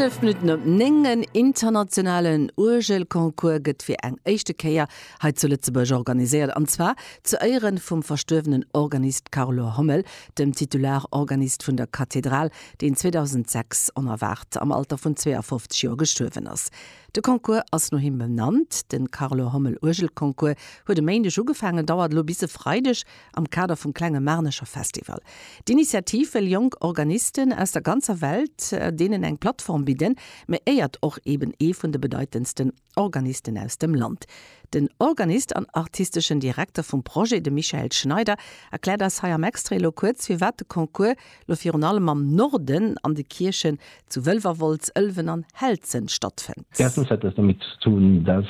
Eelef Minutten op 9, En internationalen Uergelconcours gëtt fir eng éischte Kéier hei zu Lëtzebuerg organiséiert, an zwar zu Éiere vum verstuerwenen Organist Carlo Hommel, dem Titularorganist vun der Kathedral, deen 2006 onerwaart am Alter vun 52 Joer gestuerwen ass. De Concours ass no him benannt. De Carlo Hommel Uergelconcours huet e Méindeg ugefaangen, dauert elo bis e Freideg. am Kader vum Klenge Maarnecher Festival. D'Initiativ wëll jonk Organisten aus der ganzer Welt deenen eng Plattform bidden, mee éiert och eben ee vun de bedeitendsten Organisten aus dem Land. Den Organist an artisteschen Direkter vum Projet, de Michael Schneider, erkläert eis hei am Extra elo kuerz, firwat de Concours lo virun allem am Norden an de Kierchen zu Wëlwerwolz, Ëlwen an Helzen stattfënnt. Erstens hätt dat domat ze tun, dass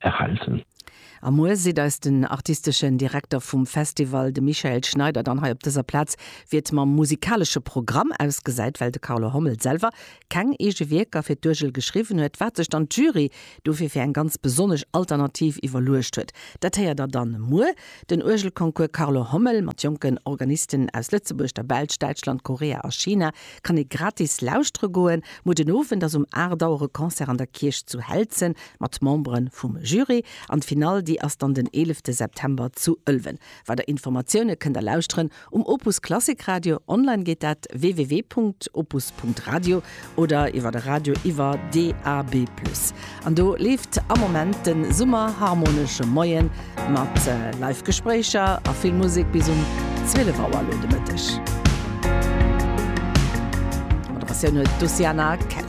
erhalten. A muer sidd eis den artisteschen Direkter vum Festival, de Michael Schneider, dann hei op dëser Plaz. Wéi et mam musikalesche Programm ausgesäit, well de Carlo Hommel selwer keng eege Wierker fir d'Uergel geschriwwen huet, wat sech dann d'Jury dofir fir eng ganz besonnesch Alternativ iwwerluecht huet, dat héiert der dann muer. Den Uergelconcours Carlo Hommel mat jonken Organisten aus Lëtzebuerg, der Belsch, Däitschland, Korea a China kann ee gratis lauschtere goen. Muer den Owend ass um 8 Auer e Concert an der Kierch zu Helzen mat Membere vum Jury an d'Finall déi ass dann den 11 September zu Ëlwen. Weider Informatioune kënnt der lauschteren um Opus Klassik Radio, online geet dat www.opus.radio oder iwwer de Radio iwwer DAB+. An do leeft am Moment den Summer Harmonesche Moien mat live Gespréicher a vill Musek bis um 12 Auer elo de Mëtteg. D'Moderatioun huet d'Oceana Kell.